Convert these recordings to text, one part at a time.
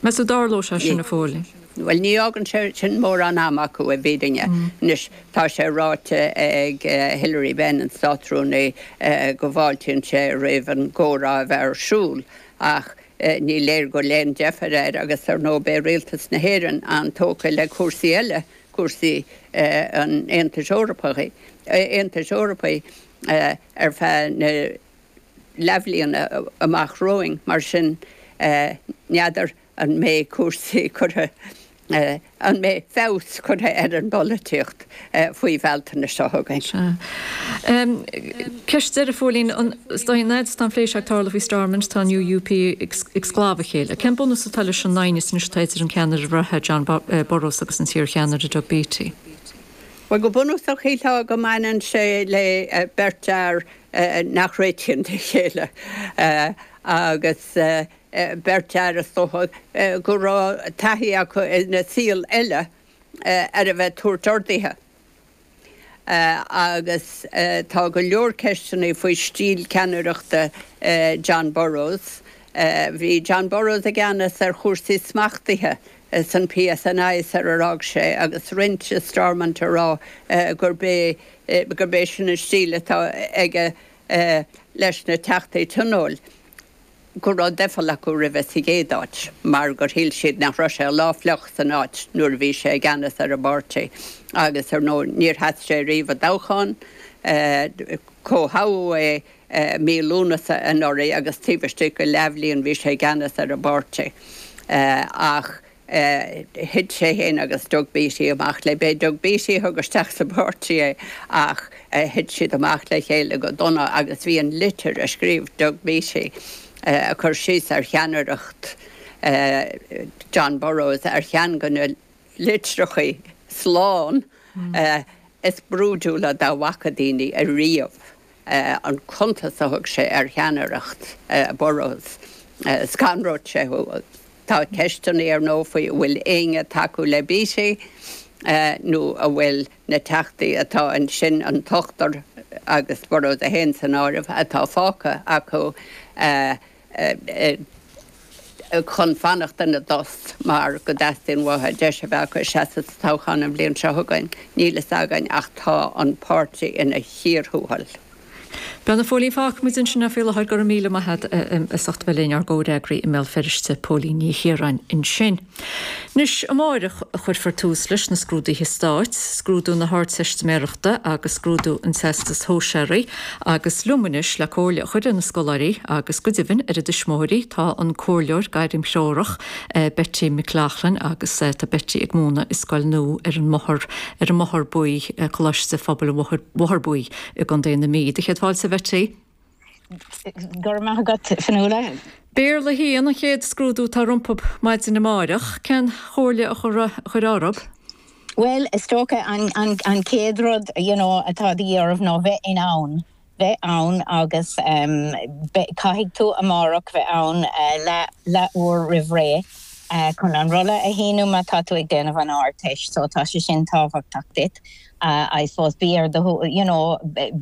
Meas tú an dtarlódh sé sin, a Phóilín. Bhuel, ní fhágann sé sin mórán ama acu i bhfírinne. Anois, tá sé ráite ag Hilary Benn, an Státrúnaí, go bhfáiltíonn sé roimh an gcomhrá a bheith ar siúl, ach ní léir go bhfuil aon deifir air agus, ar ndóigh, beidh Rialtas na hÉireann an-tógtha le cúrsaí eile, cúrsaí an Aontais Eorpaigh, ar feadh na. leathbhliana amach romhainn, mar sin n'fheadar an mbeidh cúrsaí curtha, an mbeidh feabhas curtha ar an bpolaitíocht faoi Bhealtaine seo chugainn. Sea. Ceist deiridh, Phóilín, ar ndóigh an fhad is atá an plé seo ag tarlú faoi Stormont, tá an UUP ag sclamhadh a chéile. Cén bunús atá leis an aighneas anois atá idir an ceannaire reatha, John Burrows agus an t-iarcheannaire, Doug Beattie? Bhuel, go bunúsach shílfeá go mbaineann sé le beirt fhear nach réitíonn le chéile agus beirt fhear, is dócha, go raibh taithí acu ina saol eile ar a bheith ag tabhairt orduithe. Agus tá go leor ceisteanna faoi stíl ceannaireachta John Burrows. Bhí John Burrows i gceannas ar chúrsaí smachtaithe Sa PSNI sar ar fhág sé agus roinnt i Stormont ag rá gurb é gurb é sin an stíl atá aige leis na Teachtaí Tionóil go raibh doicheall acu roimhe sa gcéad áit mar gur shíl siad nach raibh sé lá fliuch féin san áit nuair a bhí sé i gceannas ar an bpáirtí agus ar ndóigh níor sheas sé riamh i dtoghchán, comhthoghadh é. I mí Lúnasa anuraidh agus taobh istigh de leathbhliain bhí sé i gceannas ar an bpáirtí. Ach thit sé féin agus Doug Beattie amach le. B'é Doug Beattie a thug isteach sa bpáirtí é ach thit siad amach le chéile go dona agus bhí an litir a scríobh Doug Beattie ag cur síos ar cheannaireacht John Burrows ar cheann de na litreacha slán is brúidiúla dá bhfaca daoine ariamh. an cuntas a thug sé ar cheannaireacht Burrows, scanródh sé thú. Tá ceisteanna ar ndóigh faoi an bhfuil éinne ag tacú le Beattie nó an bhfuil na teachtaí atá ansin, an t-ochtar agus Burrows é féin san áireamh, atá fágtha acu. chun fanacht ina dtost mar go dteastaíonn uathu deis a bheith acu seasamh sa toghchán an bhliain seo chugainn. Níl fhios againn ach tá an páirtí ina chíor thuathail. Bhuel, a Phóilín, fágfaidh muid ansin é faoi láthair, go raibh míle maith agat as ucht bheith linn, ár gcomhfhreagraí i mBéal Feirste, Póilín Ní Chiaráin ansin. Anois amáireach a chuirfear tús leis na scrúduithe stáit, scrúdú na hArdteistiméarachta agus scrúdú an Teastais Shóisearaigh, agus liom anois le comhairle a chur ar na scoláirí, agus go deimhin ar a dtuismitheoirí, tá an comhairleoir gairimthreorach, Betty McLaughlin, agus tá Betty ag múineadh i scoil nua ar an mBóthar, ar an mBóthar Buí, Coláiste Phobail an Bhóthair Bhuí, i gContae na Mí. Sé do chéad fáilte, a Bhetty. Go raibh maith agat, Fionnuala. Béarla 1 an chéad scrúdú atá rompub maidin amáireach. Cén chomhairle a chuirfeá orthub? Bhuel, is dócha an chéad rud you know atá de dhíth orthu ná bheith in ann bheith ann agus beidh, caithfidh tú amárach bheith ann leath, leath uair roimh ré chun an rolla a shíniú má tá tú ag déanamh an Ardteist so tá sé sin tábhachtach duit. I suppose bí ar do you know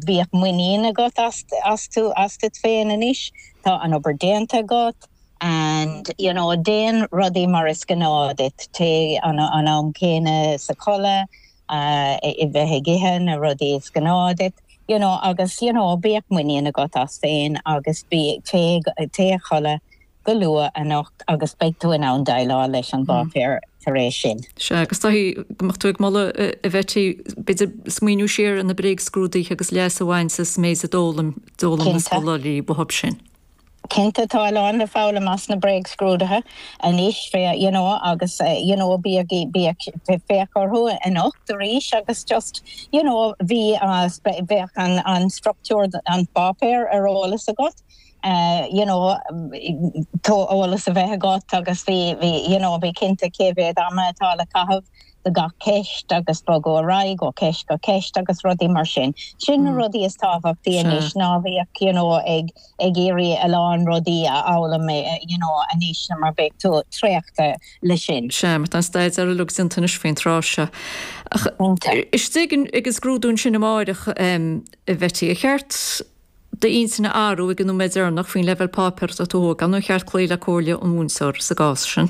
bíodh muinín agat as tú asat féin anois, tá an obair déanta agat and you know déan rudaí mar is gnáth duit, téigh an am céanna a chodladh, a bheith ag ithe na rudaí is gnáth duit you know agus you know bíodh muinín agat as féin agus bí téigh téigh a chodladh. go luath anocht agus beidh tú in ann déileáil leis an bpáipéar tar éis sin. Sea, agus dóichí go mbeadh tú ag moladh, a Bhetty, b'fhéidir smaoineamh siar ar na bréagscrúduithe agus leas a bhaint as an méid a d'fhoghlaim, d'fhoghlaim na scoláirí uathub sin. Cinnte, tá a lán le foghlaim acu as na bréagscrúduithe anois, you know, agus, you know, bíodh, bíodh, féach orthu anocht arís agus just, you know, bhí, bheadh an structúr an pháipéir ar eolas agat. eh you know tá eolas a bheith agat agus bí bí you know bí cinnte cé mhéad ama atá le caitheamh do gach ceist agus bogadh ar aghaidh ó cheist go ceist agus rudaí mar sin. Sin na rudaí is tábhachtaí anois ná bíodh you know ag ag iarraidh a lán rudaí a fhoghlaim eh you know anois na mar beidh tú traochta le sin. Sea, mar tá an staidéar ar fad déanta anois faoin tráth seo. Ach istigh ag an scrúdú ansin amáireach a Bhetty, ar cheart d'intinn a athrú ag an nóiméad deireanach faoin leibhéal páipéir atá tú ag tabhairt faoi, nó ar cheart cloí le comhairle an mhúinteora sa gcás sin.